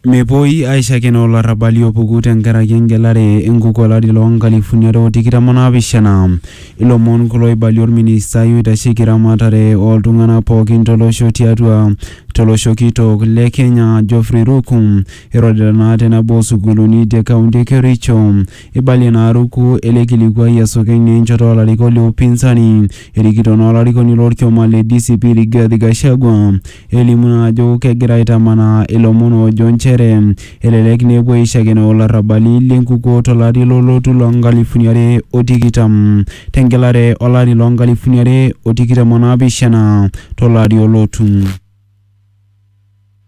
Mepuoi aishakenoo olarrabali opuku tenkaraki engelare enkuku olari loo nkalifuni are o tikitam o naapishana. Ilomon kulo oibalie olministai oitasheki eramatare oo ltung'ana pooki to losho tiatua to losho kitok le Kenya Geoffrey Ruku irorita naa te nabo oo sukuuluni te kaunti e Kericho. Eibalie ina aruku ele kilikuai esokeny naa enchoto o larikok le upinzani erikito naa olarikoni lo lkioma le DCP Rigathi Gachagua elimu naa ajo kegira aitamanaa ilomon oojo nchere elelek naa epuo aishakenoo olarrabali le nkukuo to lari lolotu loo nkalifuni are o tikitam te ngelare o lari loo nkalifuni are o tikitam o naapishana to lari olotu.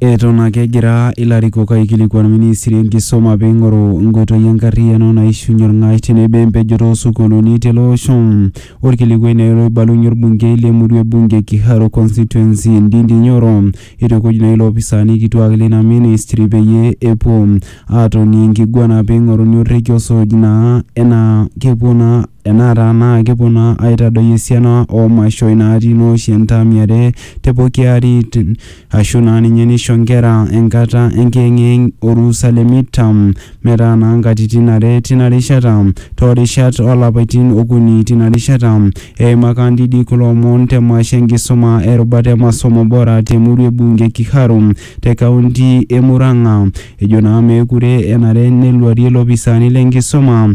Eton ake egira ilarikok aikilikuan ministri enkisuma peing'oru nkoitoi enkarriyiano naishunye olng'ash tenebo empejoto oosukuuluni tele osho. Olkilikuai naa ilo oibalunye olbungei le murua e bunge e Kiharu constituency Ndindi Nyoro eitukuj naa iloopisaani kituak leina ministri peyie epuo aatoni enkiguana peing'oruni orrekia osuj naa enaa kepuo naa Enaata naa kepuo naa aitadoi esiana oo mashoi naati naa oshi entaami are te poki ari ashu naa ninye nisho nkera enkata enkiyeng'iyeng' orusa le midterm metaa naa nkatitin are tina rishata too rishat oo lapaitin okuni tina rishata. Eima Kandidi kulo omon te masho enkisuma e rubata e Masomo Bora te murua e Bunge Kiharu te kaunti e Murang'a. Ejo naa meekure enare neluarie ilopisaani le nkisuma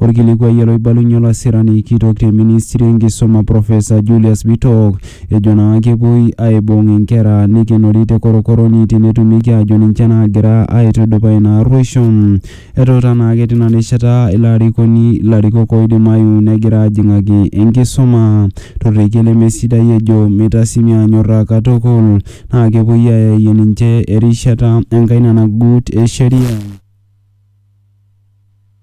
Olkilikuai oloibalunye olasirani kitok te ministry e nkisuma Professor Julius Bitok ejo naa kepuoi aibung inkera neikenori te korokoroni tenetumieki aajo ninche naagira aitudupaa ina arruoisho. Etuuta naake tina rishata ilo arikoni ilarikok oidimayu negira aajing'aki enkisuma to rrekie lemesidai ejo meitasimi aanyorraa katukul naa kepuoi aayayie ninche erishata enkaina nagut e sheria.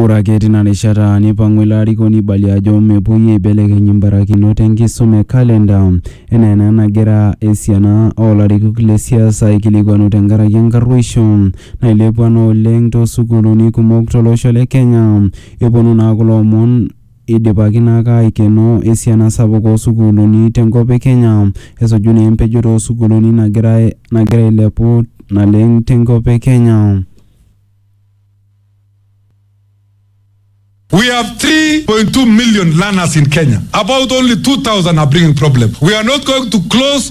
Ore ake tina rishata neipang'u ilo arikoni aibalie ajo mepuoi aibelekeny imbarakinot enkisuma e kalenda enaa ena nagira esiana oo larikok le siasa aikilikuanu tenkaraki enkarruoisho nailepua naa oleng too sukuuluni kumok to losho le Kenya. Eponu naa kulo omon Eidipaki naa ake aaikeno esiana sapuk oo sukuuluni te nkop e Kenya esuju naa empejoto oo sukuuluni nagira nagira ailepu naleng te nkop e Kenya. We have 3.2 million learners in Kenya, about only 2000 are bringing problems. We are not going to close.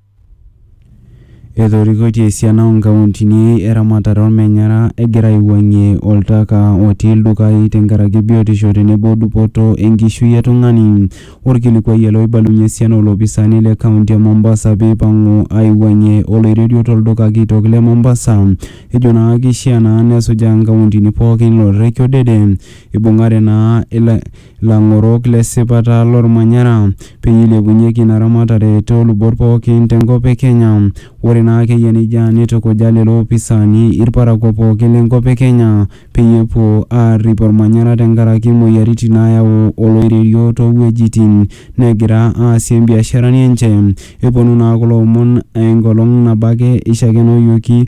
Etorikoitie esiana oo nkauntini eramatare olmenyara egira aiwuangie oltaka otii ildukai tenkaraki biotisho tenebo dupoto enkishui e tungani. Olkilikuai ele oibalunye esiana oo lopisaani le kaunti e Mombasa pee eipangu aiwuangie oloirerio to lduka kitok le Mombasa. Ejo naa keishaa naa nesujaa nkauntini pooki ilo rrekie odede eibungare naa lang'orok le sipata lolmanyara peyie eilepunyeki ina ramatare too lubot pooki te nkop e Kenya. Ore naa ake eyia neijia neitukuja lelo opisaani ilparakua pooki le nkop e Kenya peyie epuo aarrip olmanyara te nkaraki imoyiaritin naayau oloirerio too wuejitin negira aasie imbiasharani enche. Eponu naa kulo omon enkolong nabo ake eishakenoyioki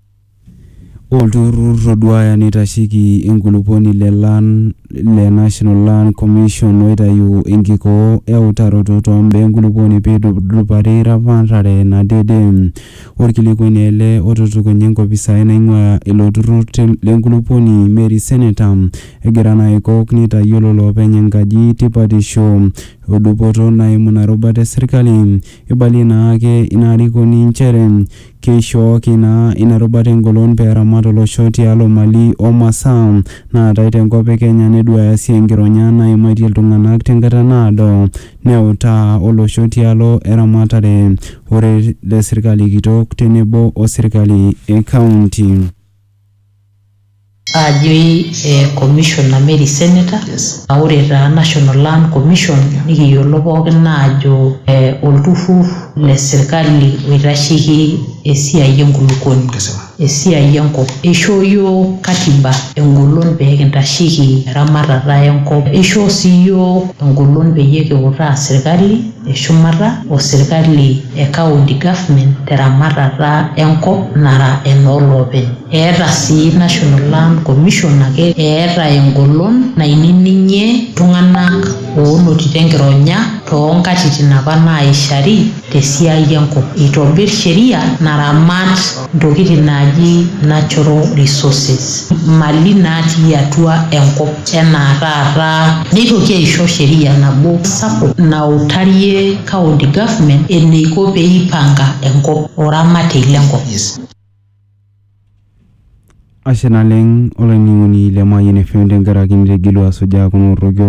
Olturrur oduaya neitasheki enkulupuoni le Land le National Land Commission oitayu enkikoo e utaroto too mbaa enkulupuoni peitudupari eramatare nadede. Olkilikuai naa ele otutukunya enkopisai naing'uaa ilo turrur le nkulupuoni Mary Seneta egira naa aikok neitayiolo loopeny enkaji tipatisho o dupoto naimu ina rubata e serkali. Eibalie naake ina arikoni nchere Keishooki naa ina rubata engolon pee eramat olosho tialo mali o masaa naatae te nkop e Kenya neduaaya sii enkironya naimaitie iltung'ana te nkata naado neutaa olosho tialo eramatare orere le sirkali kitok tenebo o sirkali e kaunti. Aajoi eh commissioner Mary Senator ah ore taa National Land Commission nikiyiolo pookin aajo eh olturrur le sirkali oitasheki esiai e nkulukuoni. Kesipa. Esiai e nkop. Eishoo iyiook katiba eng`olon pee kintasheki eramatata e nkop. Eishoo sii iyiook eng`olon pee kiutaa sirkali. e shumata o serkali e county government te ramatata e nkop nara enoo loopeny. Eeta sii National Land Commission ake eeta engolon nainining'ie ltung'anak oonotito enkironya too nkatitin apa naaishari te siai e nkop. Eitobir sheria naramat. ntokitin naaji natural resources mali natii atua enkop enaa taata neitoki aisho sheria nabo sapuk nautarie county government eneiko pee eipanga enkop o ramatei le nkop. Ashe naleng olainining'oni le Mayian FM tenkaraki nitigilua asujaa kuna orroki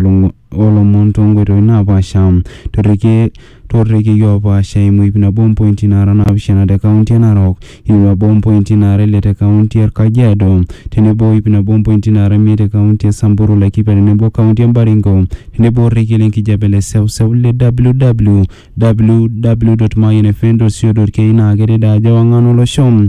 oolomon toonkoitoi naapaasha torrekie toorrekiei oopaasha eimu iip nabo ompointi naara naapishana te kaunti e Narok, iip nabo ompointi naara ile te kaunti e Kajiado tenebo o iip nabo ompointi naara imiet te kaunti e Samburu, Laikipia tenebo kaunti e Baringo tenebo orrekie le nkijape le seuseu le www. Mayian FM co. ke naa kedede ajo ewang'an olosho.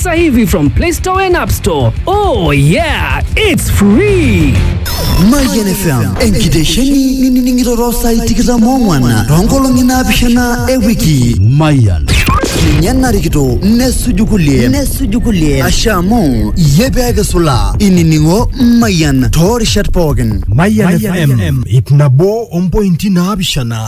Sasa hivi from Play Store and App Store. Oh yeah, it's free. Mayian FM enkitesheni nining'ito too saai tikitam oong'wan toonkolong'i naapishana e wiki Mayian ninye narikito nesuju kulie nesuju kulie asha amu iyie pee kisulaa inining'o Mayian too rishat pookin Mayian FM ip nabo ompointi naapishana